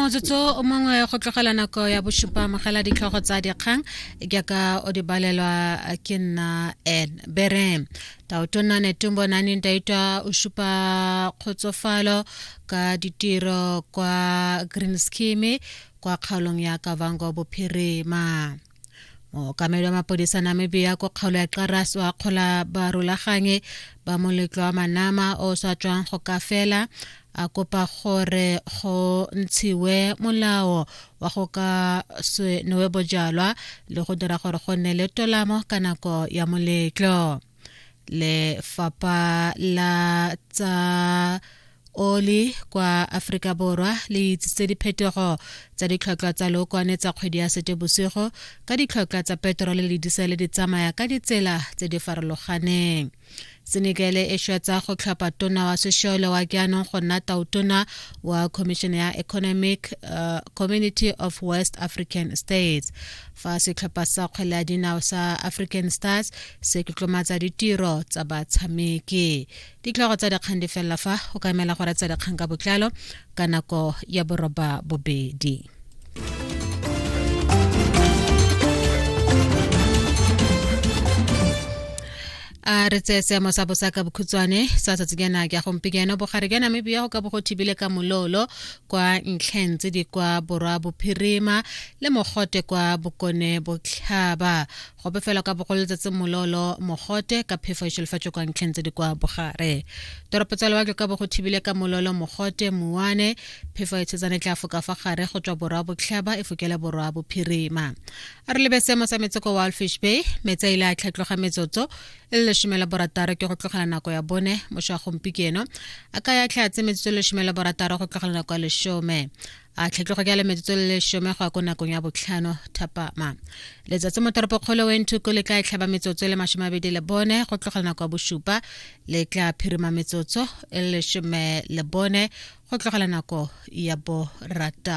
motsotso o mongwe go tlogela nako ya bosupa mogela ditlhogo tsa dikgang jaaka o di balelwa ke nna n bere taotona netumbo nani ntaitwa o supa kgotsofalo ka ditiro kwa green scheme kwa kgaolong ya kavango bophirima mookamedi wa mapodisa namibia ko kgaolo ya xaras o akgola barulaganye ba moletlo wa manama o sa tswang go ka fela a kopa gore go ntshiwe molao wa go ka se nowe bojalwa le go dira gore go nne le tolamo ka nako ya moletlo lefapha la tsa oli kwa aforika borwa le itsitse diphetogo tsa ditlhotlhwa tsa lookwane tsa kgwedi ya sete bosigo ka ditlhotlhwa tsa petrole le disele di tsamaya ka ditsela tse di farologaneng senekele e shwetsa go tlhopha tona wa sešole wa jaanong go nna tautona wa commission ya economic uh, community of west african states fa setlhopha sa kgwele ya dinao sa african stars se tlotlomatsa ditiro tsa batshameki ditlhogo tsa dikgang di felela fa o ka emela gore tsa dikgang ka botlalo ka nako ya boroba bobedi a re tseye seemo sa bosa ka bokhutswane sa tsatsijana ke ya gompikeno bogare jwa namibia go ka bo go thibile ka mololo kwa ntlheng tse di kwa borwa bophirima le mogote kwa bokone botlhaba go befela ka bogolo letsatsi mololo mogote ka phefo e šolofatšo kwa ntlheng tse di kwa bogare toropo tsa lewatle ka bo go thibile ka mololo mogote mowane phefo e tshetsane tla foka fa gare go tswa borwa botlhaba e fokela borwa bophirima a re lebe seemo sa metseko wa alfish bay metsi a ile a tlhatloga metsotso e le lesome la borataro ke go tlogela nako ya bone mošwa gompikeno a ka ya tlhatse metsotso le lesome la borataro go tlogela nako ya lesome a tlhetlego ka le metsotso le lesome go ya ko nakong ya botlhano thapama letsatsi mo toropokgolo wentuko le tla e tlhaba metsotso le masome abedi le bone go tlogela nako ya bosupa le tla phirima metsotso e le lesome le bone go tlogela nako ya borataro